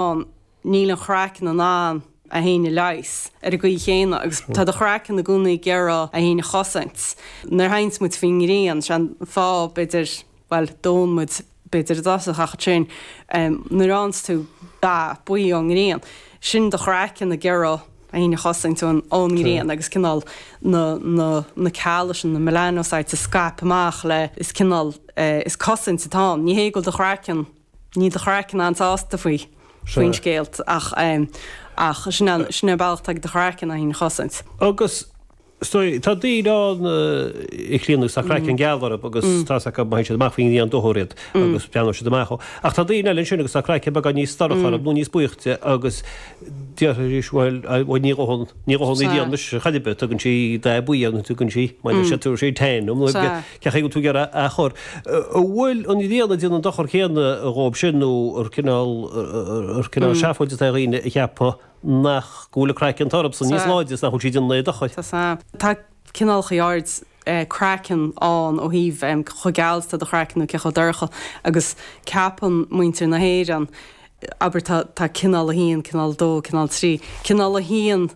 ann. Níl an craiceann in ann é féin a leigheas ar an gcaoi chéanna agus tá do chraiceann i gcónaí ag iarraidh é féin a chosaint. Nuair a théanns muid faoin ngrian, sé an fáth, b'fhéidir, bhuel, dónn muid, b'fhéidir, i dtosach ach ansin nuair a fhaigheanns tú dath buí ón ngrian, sin do chraiceann ag iarraidh é féin a chosaint ón ngrian agus cineál na, na, na cealla sin, na melanocytes, a scaip amach le, is cineál, is cosaint atá ann. Ní hé go bhfuil do chraiceann. Níl do chraiceann an-sásta faoin scéal ach sin an bealach atá ag do chraiceann é féin a chosaint. Agus tá daoine ann a Chlíona agus tá craiceann geal orthu agus tá a fhios acu, má théann siad amach faoin ngrian dófar iad agus breathnóidh siad amach. Ach tá daoine eile ansin agus tá craiceann beagán níos dorcha orthu nó níos buíochta agus déarfaidh siad, bhuel, ní dhónn an ghrian anois, cad é, tugann sí dath buí ann, tugann sí, baineann siad, tabharfaidh sí tan dom. Caithfidh tú gearr a chur. An bhfuil an ghrian ag déanamh an dochar céanna dhóibh sin nó an cineál seafóid atá ag daoine a cheapadh nach go bhfuil an craiceann orthu sin níos láidre is nach bhfuil sí ag déanamh aon dochar? Tá cineálacha áirid craiceann ann ó thaobh chomh geal is atá do chraiceann nó cé chomh dorcha agus ceapann muintir na hÉireann, abair, tá cineál a haon, cineál a dó, cineál a trí, cineál a haon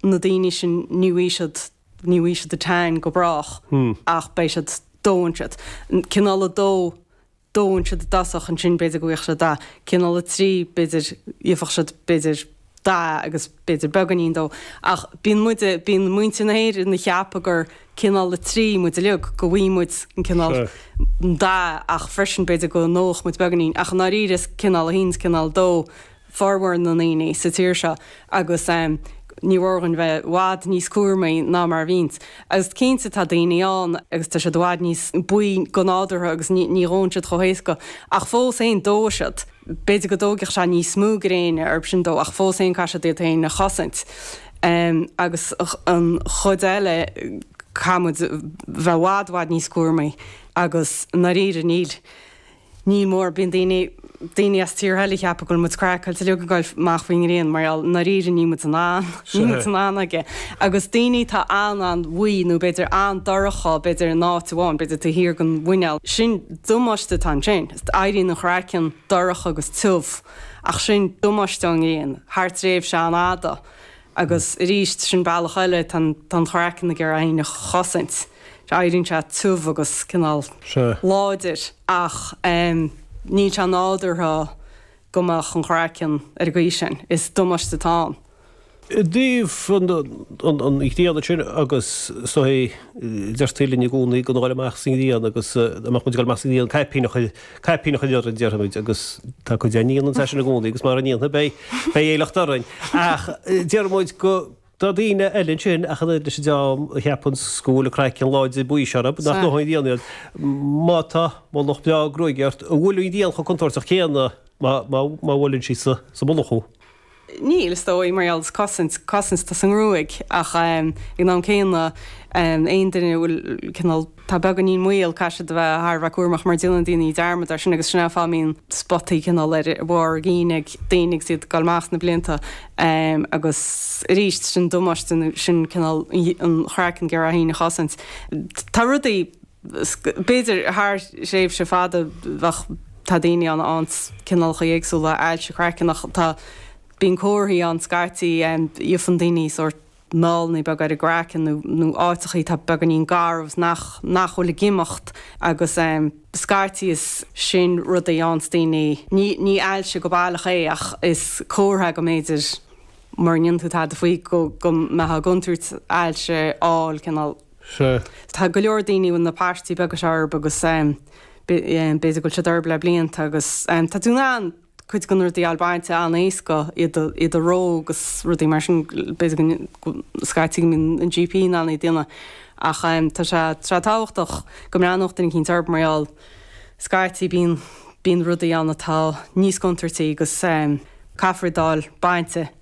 na daoine sin ní bhfaighidh siad Ní bhfaighidh siad tan go brách ach beidh siad, dónn siad. Cineál a dó, dónn siad i dtosach, ansin b'fhéidir go bhfaighfeadh siad dath. Cineál a trí, b'fhéidir, gheobhadh siad, b'fhéidir, dath agus b'fhéidir beagáinín dó. Ach bíonn muid, bíonn muintir na hÉireann a cheapadh gur cineál a trí muid uilig, go bhfaighidh muid an cineál dath ach freisin b'fhéidir go ndófadh muid beagáinín. Ach i ndáiríre is cineál a haon is cineál a dó formhór na ndaoine sa tír seo agus ní mór dhúinn bheith i bhfad níos cúramaí ná mar a bhíonns. Agus cinnte tá daoine ann agus tá siad i bhfad níos buí go nádúrtha agus ní dhónn siad chomh héasca ach fós féin dófaidh siad. B'fhéidir go dtóigfeadh sé níos mó gréine dhóibh sin dó ach fós féin caithfidh siad iad féin a chosaint. Agus an chuid eile caithfidh muid bheith i bhfad, bhfad níos cúramaí agus i ndáiríre níl. Ní mór, bíonn daoine, daoine as tíortha eile a cheapadh go bhfuil muid craiceáilte uilig ag dul amach faoin ngrian mar gheall, i ndáiríre níl muid in ann, níl muid in ann aige. Agus daoine atá an-, an-bhuí nó b'fhéidir an-dorcha, b'fhéidir in áit amháin, b'fhéidir taobh thiar den mhuineál, sin damáiste atá ansin, éiríonn an craiceann dorcha agus tiubh ach sin damáiste ón ngrian thar tréimhse an-fhada agus arís sin bealach eile, tá an, tá an craiceann ag iarraidh é féin a chosaint. Éiríonn sé tiubh agus cineál láidir ach níl sé sin nádúrtha go mbeadh an craiceann ar an gcaoi sin. Sin damáiste atá ann. I dtaobh an ghrian ansin agus deirtí linn i gcónaí gan a dhul amach sa ngrian agus dá mbeadh muid ag dul amach sa ngrian, caipín a chur, caipín a chur orainn, déarfaidh muid, agus tá cuid againn a dhéanann é sin i gcónaí agus mura ndéanfaidh, beidh aiféala orainn. Ach déarfaidh muid go. Tá daoine eile ansin, ach an oiread leis an dream a cheap go bhfuil an craiceann láidir buí sin orthu, nach ndófaidh an ghrian iad. Má tá, mullach breá gruaige ort, an bhfuil an ghrian chomh contúirteach céanna má bhuaileann sí sa mullach thú? Níl, is dóigh, mar gheall ar cosaint, cosaint atá sa ngruaig, ach ag an am céanna, aon duine a bhfuil cineál, Tá beagáinín maol, caithfidh siad a bheith thar a bheith cúramach mar déanann daoine dearmad air sin agus sin é an fáth a mbíonn spotaí cineál ar bharr a gcinn ag daoine agus iad ag dul amach sna blianta agus arís sin damáiste nó sin cineál an craiceann ag iarraidh é féin a chosaint. Tá rudaí b'fhéidir thar thréimhse fada ach tá daoine ann tá cineálacha éagsúla ailse craicinn ach tá bíonn comharthaí ann scaití, faigheann daoine sórt, meall nó beag ar an gcraiceann nó áiteachaí atá beagáinín garbh nach bhfuil ag imeacht agus scaití is sin rud a dhéananns daoine, ní ailse go baileach é ach is comhartha go mb'fhéidir mura ndéanann tú tada faoi go mbeifeá i gcontúirt ailse a fháil cineál. Sea. Tá go leor daoine a bhfuil na paistí beaga seo orthu agus b'fhéidir go bhfuil siad orthu le blianta agus tá tú in ann, cuid de na rudaí a fháil bainte an-éasca, iad a reo agus rudaí mar sin, b'fhéidir go, scaití go mbíonn an GP in ann iad a dhéanamh ach tá sé, tá sé tábhachtach go mbreathnódh duine eicínt orthu mar gheall, scaití bíonn, bíonn rudaí ann atá níos contúirtí agus caithfear iad a fháil bainte.